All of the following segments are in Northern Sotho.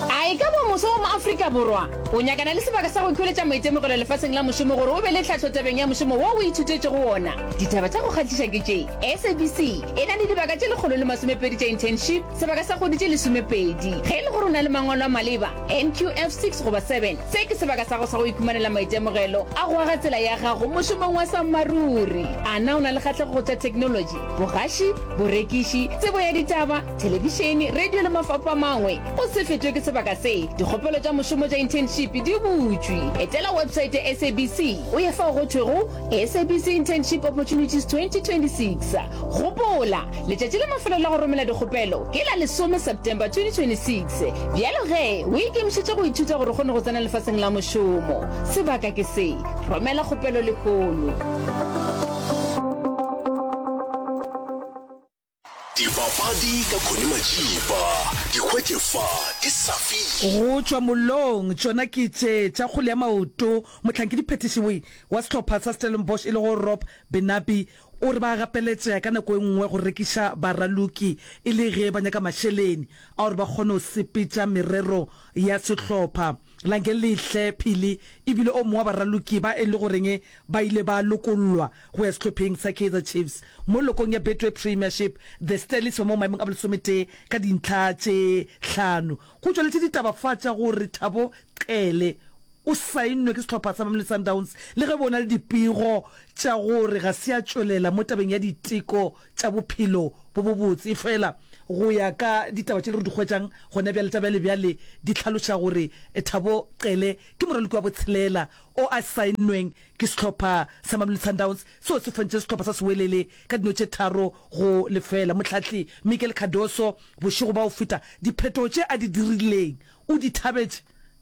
A e ka ba moswa wa mo Afrika Borwa o nyakana le sebaka sa go ikhweletša maitemogelo lefaseng la mošomo gore o be le tlhahlo tabeng ya mošomo wo o ithutetšego wona? Ditaba tša go kgahliša ke tše, SABC e na le dibaka tše lekgolo le masomepedi tša internship, sebaka sa kgwedi tše lesomepedi. Ge e le gore o na le mangwalo a maleba, NQF six goba seven, se ke sebaka sa go sa go ikhumanela maitemogelo a go aga tsela ya gago mošomong wa sammaruri. A na o na le kgahlego go tša theknolotši, bogaši, borekiši, tsebo ya ditaba, thelebišene, radio le mafapho a mangwe. O se fetšwe ke sebaka se. Dikgopelo tša mošomo tša internship di butšwe. Etela website ya SABC o ye fao go thwego SABC Internship Opportunities 2026. Gopola, letšatši la mafelo la go romela dikgopelo ke la lesome September 2026. Bjalo ge o ikemišetše go ithuta gore o kgone go tsena lefaseng la mošomo, sebaka ke se. Romela kgopelo lehono. Dipapadi ka Connie Majiba, di hwetše fa di sa fihli. Go tšwa mollong, tšona ke tše tša kgole ya maoto. Mohlankedi phetišiwoi wa sehlopha sa Stellenbosch e lego Rob Benabi o re ba gapeletšega ka nako e nngwe go rekiša baraloki e le ge ba nyaka mašeleni a gore ba kgone go sepetša merero ya sehlopha. La nke le hle pele e bile o mongwe wa baraloki ba e le goreng ba ile ba lokollwa go ya sehlopheng sa Kaizer Chiefs mo lokong ya Betway Premiership, The Sterlies ba mo maemong a bolesometee ka dintlha tše hlano. Go tšweletše ditaba fa tša gore Thabo Qhele o saennwe ke sehlopha sa Mamelodi Sundowns le ge bo na le dipego tša gore ga se a tšwelela mo tabeng ya diteko tša bophelo bo bobotse. Efela go ya ka ditaba tše re di hwetšang gona bjale tša bjalebjale, di hlaloša gore Thabo Cele ke moraloki wa botshelela o a sainnweng ke sehlopha sa Mamelodi Sundowns seo se fontše sehlopha sa Sewelele ka dino tše tharo go lefela. Mohlahli Miguel Cardoso bošego bwa go feta diphetogo tše a di dirileng o di thabetše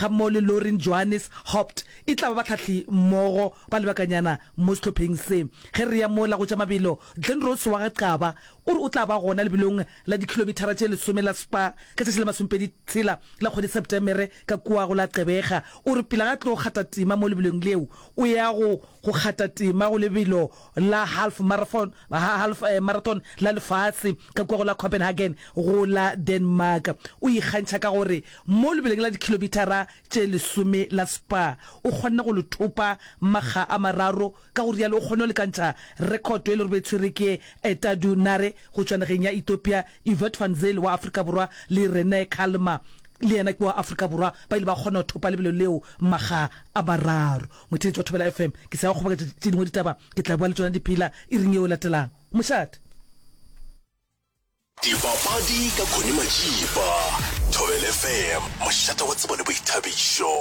gammogo le Lauren Johannes Haupt e tla ba bahlahli mmogo ba lebakanyana mo sehlopheng se. Ge re ya mola go tša mabelo, Glen Rose wa ga Qaba o re o tla ba gona lebelong la dikhilomithara tše lesome la Spar ka tšatši la masomepedi tshela la kgwedi Septemere ka kua go la Gqeberha. O re pele ga tlo kgata tema mo lebelong leo, o ya go go kgata tema go lebelo la half marathon half marathon la lefase ka kua go la Copenhagen go la Denmark. O ikgantšha ka gore Mo lebeleng la dikhilomithara tše lesome la Spa, o kgonne go le thopa makga a mararo, ka go rialo o kgonne go lekantšha rekhoto e lego e tshwere ke Etadu Nare go tšwa nageng ya Ethiopia, Evert van Zyl wa Afrika Borwa le Rene Calma, le yena ke wa Afrika Borwa, ba ile ba kgona go thopa lebelo leo makga a mararo. Motheetši wa Thobela FM, ke se ya go kgoboketša tše dingwe ditaba, ke tla boa le tšona di phela iring yeo e latelago. Mošate. Dipapadi ka Connie Majiba, Thobela FM, mošate wa tsebo le boithabišo.